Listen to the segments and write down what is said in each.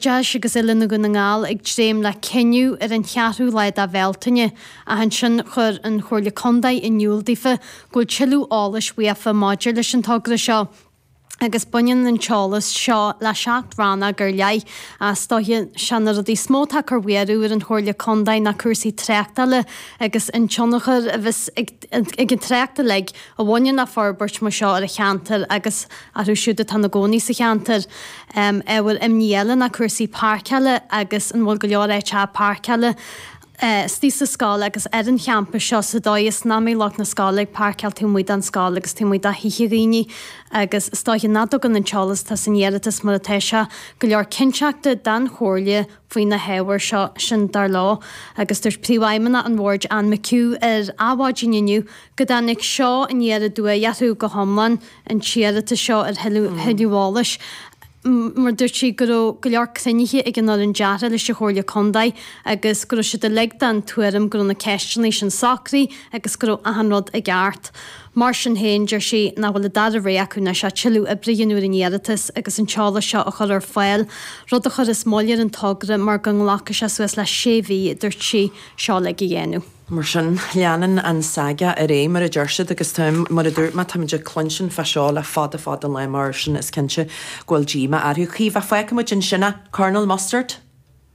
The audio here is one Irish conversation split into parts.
Deis agus Oiliúna Dhún na nGall ag dréim le cinneadh ar an cheathrú lá de Bhealtaine ach ansin chuir an Chomhairle Contae in iúl daofa go bhfuil tuilleadh eolais uaofa maidir leis an togra seo agus baineann an t-eolas seo le seacht rannóg ar leith. Is dóiche sé na rudaí is mó atá ag cur bhuaireamh ar an Chomhairle Contae ná cúrsaí tráchtála agus an tionchar a bheas ag an trácht uilig a bhaineann le forbairt mar seo ar an cheantar agus orthu siúd atá ina gcónaí sa cheantar. Ábhar imní eile ná cúrsaí páirceála agus an bhfuil go leor áiteacha páirceála istigh sa scoil agus ar an champas seo sa dóigh is nach mbeidh lucht na scoile ag páirceáil taobh amuigh den scoil agus taobh amuigh de thithe daoine agus is dóiche nach dtugann an t-eolas atá san iarratas mar atá sé go leor cinnteachta don Chomhairle faoi na hábhair seo, sin dar leo agus dúirt Príomhfheidhmeannach an Bhoird Anne McHugh ar Adhmhaidin inniu go dtáinig seo aniar aduaidh orthu go hiomlán, an t-iarratas seo ar thuilleadh eolais, mar dúirt sí go raibh go leor cruinnithe ag an fhoireann deartha leis an Chomhairle Contae agus go raibh siad uilig den tuairim go raibh na ceisteanna sin socraithe agus go raibh achan rud i gceart. Mar sin féin, deir sí nach bhfuil an dara rogha acu anois ach tuilleadh oibre a dhéanamh ar an iarratas agus an t-eolas seo a chur ar fáil, rud a chuirfeas moill ar an togra mar go nglacfaidh sé suas le sé mhí, a dúirt sí. Seo uilig a dhéanamh. Mar sin, leanann an saga ar aghaidh, mar a deir siad, agus tá, mar a dúirt mé, táimid ag cluinstin fá seo le fada fada an lá mar sin is cinnte go bhfuil díomá orthu. A Chaoimhe, fágfaidh muid ansin é. Colonel Mustard?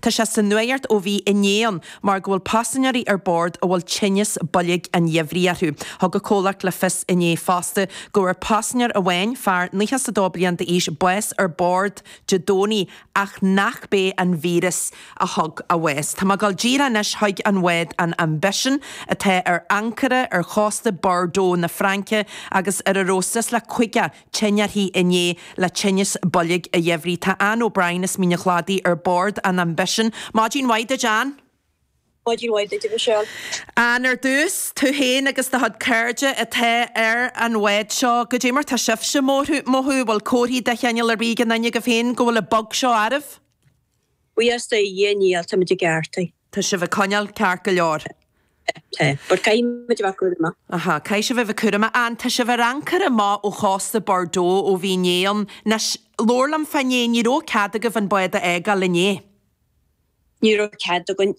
Tá sé sa nuacht ó bhí inné ann mar go bhfuil paisinéirí ar bord a bhfuil tinneas boilg an gheimhridh orthu. Thug an comhlacht le fios inné fosta go bhfuair paisinéir amháin, fear 92 bliain d'aois, bás ar bord Dé Domhnaigh ach nach b'é an víreas a thug a bhás. Tá muid ag gabháil díreach anois chuig an bhád an Ambition atá ar ancaire ar chósta Bordeaux na Fraince agus ar a raibh suas le 50 tinn uirthi inné le tinneas boilg an gheimhridh. Tá Anne O'Brien as Mín an Chladaigh ar bord an Ambition. Maidin mhaith duit, Anne. Maidin mhaith duit, a Mhichelle. Anne, ar dtús, tú féin agus do chuid cairde atá ar an bhád seo, goidé mar tá sibhse ag mothú, bhfuil comharthaí de chineál ar bith ag aon nduine agaibh féin go bhfuil an bug seo oraibh? Buíochas do Dhia níl, táimid i gceart. Tá sibh ag coinneáil ceart go leor. Tá. But caithfidh muid a bheith cúramach. Aha. Caithfidh sibh a bheith cúramach. Anne, Tá sibh ar ancaire amach ó chósta Bordeaux ó bhí inné ann. Anois, labhair liom fá inné. Ní raibh cead agaibh an bád a fhágáil inné. Ní raibh cead againn.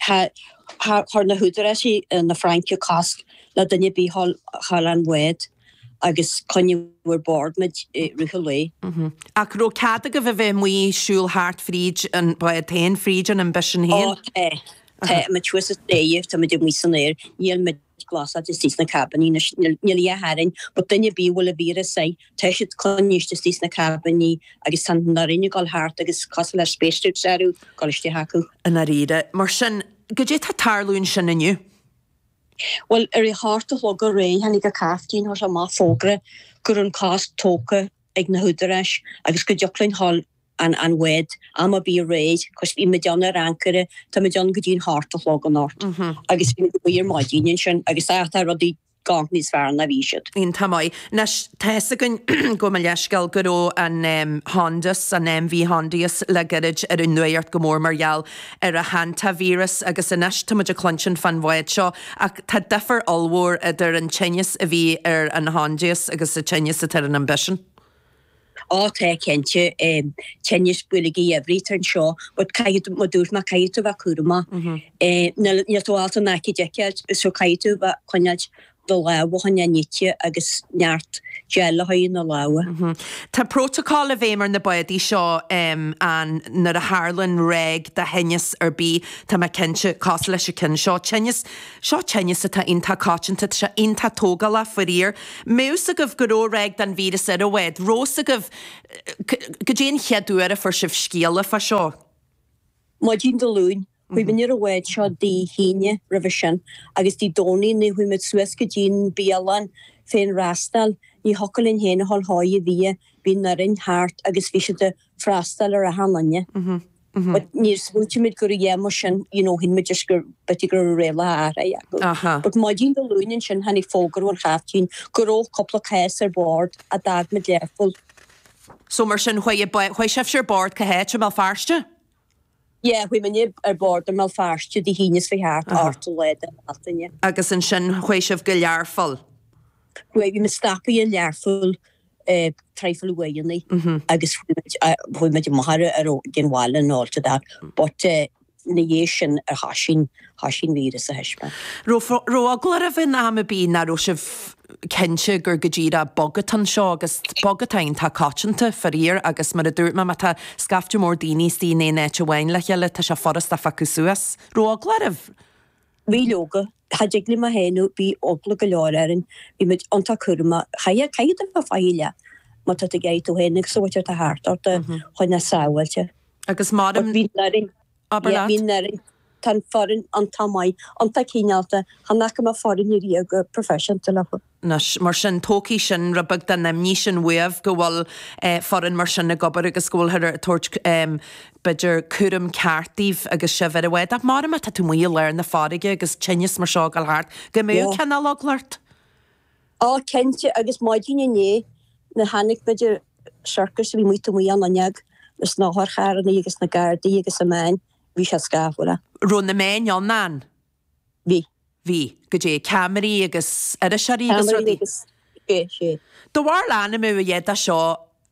Chuir na húdaráis na Fraince cosc le duine ar bith a dhul ón bhád. agus coinníodh ar bord muid i rith an lae. Ach raibh cead agaibh a bheith amuigh ag siúl thart fríd an, bhád é féin, fríd an Ambition é féin? Ó tá, tá muid thuas sa dóigh, tá muid amuigh san aer. Níl muid glasáilte istigh sna cabin anois, níl, níl a dhath orainn. But duine ar bith a bhfuil an víreas air, tá siad coinnithe istigh sna cabin agus tá an fhoireann ag dul thart agus cosúil le spacesuits orthu ag dul isteach chucu. I ndáiríre. Mar sin, goidé tá ag tarlú ansin inniu? Bhuel, ar a hocht a chlog aréir tháinig an caiftín, chuir amach fógra go raibh an cosc tógtha ag na húdaráis agus go dtiocfadh linn a ghabháil ón bhád am ar bith aréir 'cause bhí muid ann ar ancaire, tá muid ann go dtí an hocht a chlog anocht agus bhí muid amuigh ar maidin ansin agus á tá rudaí ag gabháil níos fearr ná bhí siad. Iontach maith. Anois tá fhios againn, gabh mo leithscéal, go raibh an Hondius, an MV Hondius le gairid ar an nuacht go mór mar gheall ar an hantavíreas agus anois tá muid ag cluinsint fán bhád seo ach tá difear ollmhór idir an tinneas a bhí ar an Hondius agus an tinneas atá ar an Ambition. Ó tá cinnte, tinneas boilg a dhifríocht anseo but caithfidh tú, mar dúirt mé, caithfidh tú a bheith cúramach. Níl tú ábalta an aicíd a fheiceáil so caithfidh tú a bheith ag coinneáilt do lámha a choinneáil nite agus neart gel a chaitheamh ar na lámha. Tá prótacál i bhfeidhm ar na bádaí seo ann nuair a tharlann ráig de thinneas ar bith tá mé cinnte, cosúil leis an cheann seo. Tinneas, seo tinneas atá iontach coitianta, tá sé iontach tógálach faraor. Bhí fhios agaibh go raibh ráig den víreas ar an bhád? Raibh fhios agaibh, goidé an chéad uair a fuair sibh scéala fá seo. Maidin Dé Luain, Chuaigh muid ar an bhád seo Dé hAoine roimhe sin agus Dé Domhnaigh nuair a chuaigh muid suas go dtí an bialann féinfhreastail, ní thiocfadh linn féin a ghabháil chuig an bhia, bhí an fhoireann thart agus bhí siad ag freastal ar achan duine. But níor smaointigh muid go raibh a dhath mar sin you know shíl muid just gur, b'fhéidir go raibh rialacha athraithe acu. But maidin Dé Luain ansin tháinig fógra ón chaiftín go raibh cúpla cás ar bord ó d'fhág muid Learpholl. So mar sin chuaigh, chuaigh sibhse ar bord, cá háit? I mBéal Feirste? Yeah, chuaigh mé ar bord i mBéal Feirste Dé hAoine seo chuaigh thart, an t-ochtú lá de Bhealtaine. Agus ansin chuaigh sibh go Learpholl? Chuaigh, bhí muid stoptha i Learpholl, traidhfil uaireanta agus chuaigh muid, chuaigh muid amach ar an bhaile and all that but ina dhiaidh sin a thoisigh an, thoisigh an víreas a thaispeáint. Raibh, raibh eagla oraibh in am ar bith nach raibh sibh cinnte gur go díreach bug atá anseo agus bug atá ann atá coiteanta, faraor, agus mar a dúirt mé, má tá scaifte mór daoine istigh in aon áit amháin le chéile, tá sé furasta a phiocadh suas. raibh eagla oraibh? Bhí, leoga. Cha dtig liom a shéanadh, bhí eagla go leor orainn. Bhí muid iontach cúramach. Chaithfeá, caithfidh tú bheith faichilleach má tá tú ag iarraidh tú féin agus an bhaicle atá thart ort a choinneáil sábháilte. Agus mairim. But bhí orainn. Abair leat. Mín Éireann, tá an foireann iontach maith, iontach cineálta, tá an aicme foirne ariamh go proifisiúnta leo. Anois, mar sin, tógfaidh sin rud beag den imní sin uaibh go bhfuil foireann mar sin ag obair agus go bhfuilthear ag tabhairt, b'fhéidir, cúram ceart daoibh agus sibh ar an bhád. Ach maram má tá tú amuigh i lár na farraige agus tinneas mar seo ag dul thart, go mbeadh cineál eagla ort. Ó, cinnte, agus maidin inné nuair a tháinig muid ar circus a bhí taobh amuigh ann inné leis na hotharcharrannaí agus na gardaí agus na meáin, bhí sé scáfar. Raibh na meáin ann ann? Bhí. Bhí, goidé ceamaraí agus iriseoirí agus Ceamaraí rudaí. agus, bhí, bhí. Do bharr ainm a bh dá seo.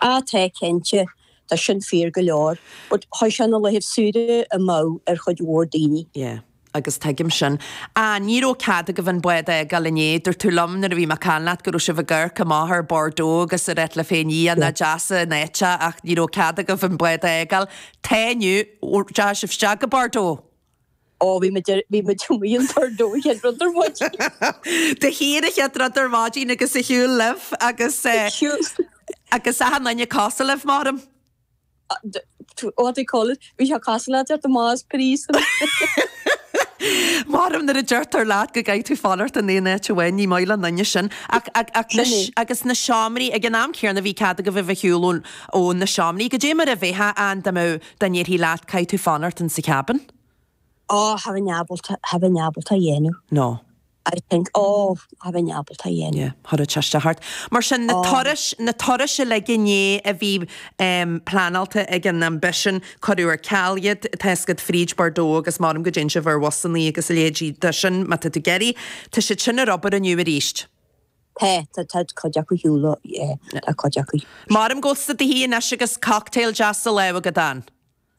A, Tá, cinnte. Tá sin fíor go leor. But chuir sé na laethibh saoire amú ar chuid mhór daoine. Yeah. Agus tuigim sin. A, Ní raibh cead agaibh an bád a fhágáil inné. Dúirt tú liom nuair a bhí mé ag caint leat go raibh sibh ag amharc amach ar Bordeaux agus ag ráit libh féin Yeah. nach deas an áit é ach ní raibh cead agaibh an bád a fhágáil. Tá inniu. Deachaigh sibh isteach go Bordeaux? Ó, bhí muid ar, bhí muid amuigh an t-ard ón chéad rud ar maidin. De shíor an chéad rud ar maidin agus ar shiúl libh agus eh, agus achan duine ag casadh libh maram. Ó, what do you call it, bhí sé casadh leat ar do Ma's Piece Maram nuair a deirtear leat go gcaithfidh tú fanacht in aon áit amháin, ní maith le aon duine sin ach, ach, ach na, Sin é. agus na seomraí, ag an am céanna bhí cead agaibh a bheith ag siúl ón, ó na seomraí, goidé mar a bheifeá ann dá mbeadh dá ndéarfaí leat, caithfidh tú fanacht insa cabin. Ó, cha bheinn ábalta, cha bheinn ábalta é a dhéanamh. No. I think, ó, cha bheinn ábalta é a dhéanamh. Yeah, thar a teiste thart. Mar sin, na turais, na turais uilig inné a bhí ehm pleanáilte ag an Ambition, cuireadh ar ceal iad, tá fhios agat, fríd Bordeaux agus maram go dtéann sibh ar bhusannaí agus a leithéidí de sin má tá tú ag iarraidh. Tá siad sin ar obair inniu arís. Tá, tá, tá cuid acu ar shiúl, yeah, tá cuid acu. Maram go bhfuil tú do shuí anois agus cocktail deas sa lámh agat, an.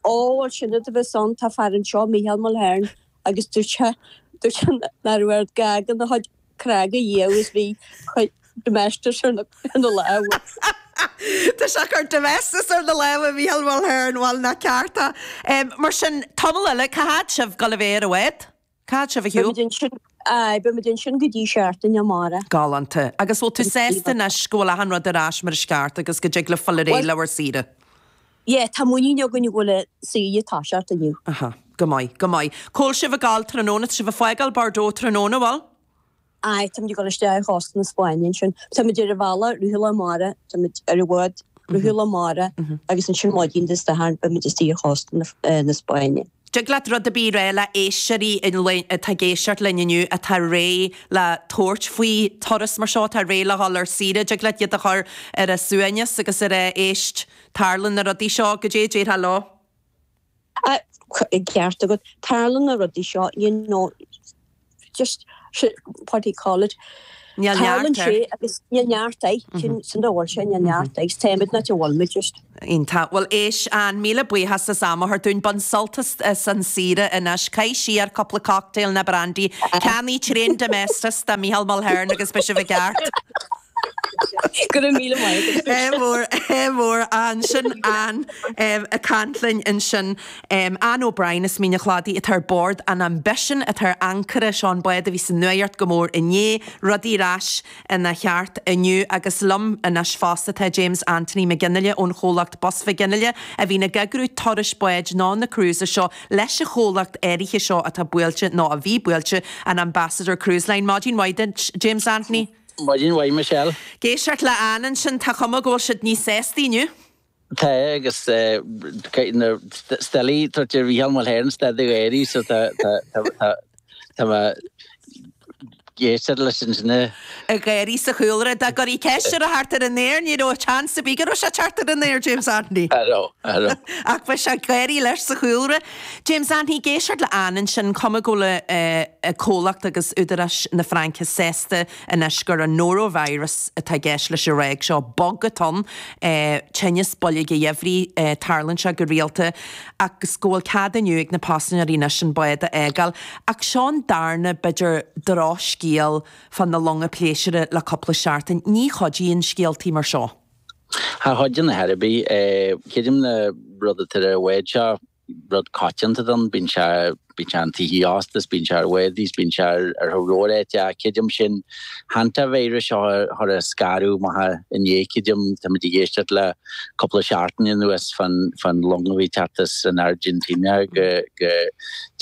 Ó, bhuel, sin rud a bheas ann. Tá fear anseo, Micheál Mulhern, agus dúirt sé, dúirt sé nach raibh aird gá gan a chuid crág a dhíol agus bheith ag cur Domestos ar na, ar na lámha. Tá sé ag cur Domestos ar na lámha, Micheál Mulhern, bhuel, nach ceart é. Mar sin, tamall eile, cá fhad sibh, ag gabháil a bheith ar an bhád? Cá fhad sibh ar shiúl. Aye, beimid ansin go dtí seachtain amárach. Galánta. Agus bhfuil tú sásta anois go bhfuil achan rud ar ais mar is ceart agus go dtig libh gabháil ar aghaidh le bhur saoire? Yeah, tá muinín againn go bhfuil saoire ag toiseacht inniu. Aha. Go maith, go maith. Cá bhfuil sibh ag gabháil tráthnóna. Tá sibh ag fágáil Bordeaux tráthnóna, bhfuil? Aye, táimid ag dul isteach ar chósta na Spáinne ansin. Táimid ar an bhealach, rith an lae amárach, táimid ar an bhád, rith an lae amárach agus ansin maidin Dé Sathairn beimid istigh ar chósta na Spáinne. Dtig leat rud ar bith a rá le éisteoirí atá ag éisteacht linn inniu atá réidh le tabhairt faoi turas mar seo, atá réidh le dhul ar saoire, dtig leat iad a chur ar a suaimhneas agus ar a, éist, tarlann na rudaí seo, goidé a déarfá leo? An ceart agat. Tarlann na rudaí seo you know just what do you call it Níl neart air. Níl neart air. Sin an dóigh sin, níl neart air. Téimid ná a bhfuil muid just. Iontach. Bhuel éist Anne, míle buíochas as am a thabhairt dúinn. Bain sult as an saoire anois. Caith siar cúpla cocktail ná brandy. Ceannaigh tréan Domestos do Micheál Mulhern agus beidh sibh i gceart. Go raibh míle maith agat. Ádh mór, ádh mór. Anne, sin Anne ag caint linn ansin. Anne O'Brien as Mín an Chladaigh atá ar bord an Ambition atá ar ancaire. Seo an bád a bhí sa nuacht go mór inné. Rudaí ar ais ina cheart inniu agus liom anois fosta tá James Anthony McGinley ón chomhlacht Bus McGinley a bhíonn ag eagrú turais báid nó na cruises seo leis an chomhlacht áirithe seo atá buailte, nó a bhí buailte, an Ambassador Cruise Line. Maidin mhaith duit, James Anthony. Maidin mhaith Michelle. Ag éisteacht le Anne ansin, tá chuma go bhfuil siad níos sásta inniu. Tá agus ní thig léi tabhairt ar Mhícheál Mulhern stad ag gáirí so tá tá mé ag éisteacht leis ansin ag gáirí sa chúlra. Dá gcuirfí ceist air a theacht ar an aer ní raibh a chance ar bith go raibh sé ag teacht ar an aer James Anthony. Ach bhí sé ag gáirí leis sa chúlra. James Anthony, ag éisteacht le Anne ansin cuma go bhfuil an comhlacht agus údaráis na Fraince sásta anois gur an norovirus atá i gceist leis an ráig seo, bug atá ann, tinneas boilg geimhridh, tarlann sé go rialta, agus go bhfuil cead inniu ag na paisinéirí anois an bád a fhágáil. Ach seo an darna, b'fhéidir, drochscéal fá na longa pléisúra le cúpla seachtain. Ní chuidíonn scéaltaí mar seo. Cha chuideann a dhath ar bith. Creidim an rud atá ar an bhád seo, rud coitianta atá ann, bíonn sé bíonn sé i dtithe ósta is bíonn sé ar bháid is bíonn sé ar thóir róir áit ach creidim an hantavirus seo a chuir an scanradh amach inné creidim táimid ag éisteacht le cúpla seachtain anuas fán fán long a bhí ag teacht as an Airgintín go go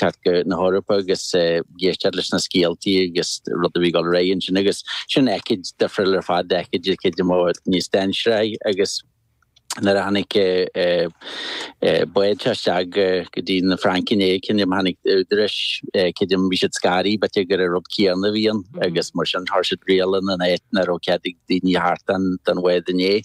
teacht chun na hEorpa agus ag éisteacht leis na scéaltaí agus rud a bhí ag dul ar aghaidh ansin agus sin aicíd difriúil ar fad aicíd atá cuid mhór níos dainséaraí agus nuair a tháinig an bád seo isteach go dtí na Fraince inné creidim tháinig údaráis creidim bhí siad scanraithe b'fhéidir gur an rud céanna a bhí ann agus mar sin chuir siad riail in áit nach raibh cead ag daoine a theacht den bhád inné.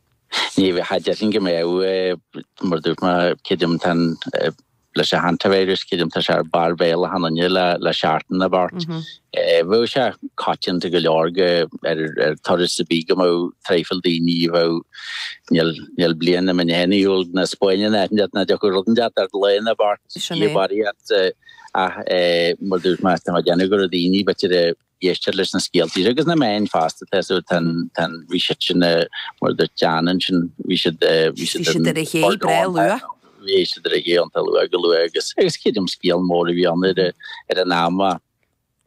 Ní bheadh, cha déarfainn go mbeadh. Mar a dúirt mé, creidim tá an, leis an hantavirus, creidim tá sé ar barr bhéal achan nduine le, le seachtain nó beirt. Bheadh sé coitianta go leor go, ar, ar turas ar bith go mbeadh traidhfil daoine a bheadh, níl, níl bliain nach mbím féin ag dul na Spáine ná Éirinn ná deoch rud inteacht ar feadh lae nó beirt. Sin é. Ach mar a dúirt mé, tá mé ag déanamh go raibh daoine, b'fhéidir a. Éistear leis na scéaltaí agus na meáin feasta atá súil tá an bhí siad mar a dúirt tú déanann sin bhí siad bhí siad ar an bord iontach luath bhí siad ar a gcé iontach luath go luath agus agus creidim scéal mór a bhí ann ar an am a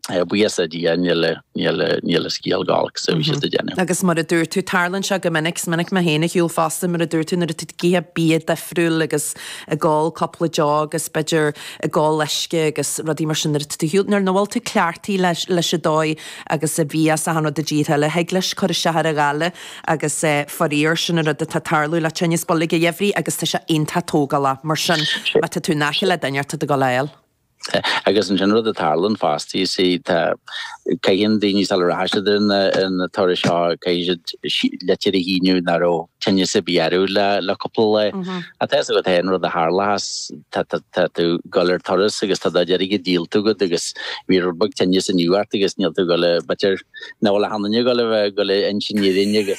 bhíos a Dhia níl a níl a níl a scéal gach lá so bhí siad a' déanamh. Agus mar a dúirt tú tarlaíonn seo go minic is minic mé féin ag siúl fosta mar a dúirt tú nuair atá tú ag ithe bia difriúil agus ag ól cúpla deoch agus b'fhéidir ag ól uisce agus rudaí mar sin nuair a nuair nach bhfuil tú cleachtaithe leis leis an dóigh agus a bhíos achan rud i dtíortha eile thig leis cur isteach ar an ghoile agus faraor sin an rud atá ag tarlú le tinneas boilg an gheimhridh agus tá sé iontach tógálach mar sin má tá tú in aice le duine tá tú ag dul á fháil. Agus ansin rud a tharlaíonn fosta, you see, tá, achan duine sula rachaidh siad ar na turais seo, caithfidh siad litir a shíniú nach raibh tinneas ar bith orthu le cúpla lá. Ach tá a fhios agat féin an rud a tharlaíos, tá tú, tá tú ag dul ar turas agus tá do chuid airgid díolta agat agus bhí rud beag tinnis inniu ort agus níl tú ag dul, beidh, now, well, achan duine ag dul, ag dul a insint d'aon duine,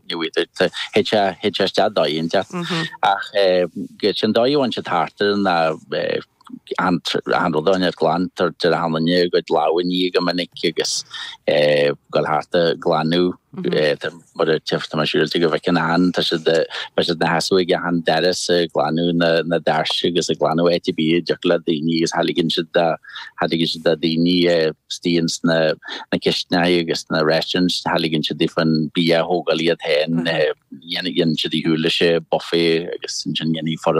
Thit sé, thit sé isteach dá dheoin de. Ach sin dóigh a a dtéann siad thart ar na, an, achan rud iontach glan tá ar, achan duine a gcuid lámha a ní go minic agus goil thart a ghlanadh, mar a, tá mé siúráilte go bhfeiceann achan, tá siad, bíonn siad ina seasamh ag achan doras a ghlanadh na, na doirse agus a ghlanadh áit a' bith a dtiocfadh le daoine agus cha ligeann siad a. Cha ligeann siad do dhaoine istigh sna cistneáí agus sna restaurants, cha ligeann siad daofa an bia a thógáil iad féin, déanann siad ar shiúl leis an buffet agus ansin déanann an fhoireann.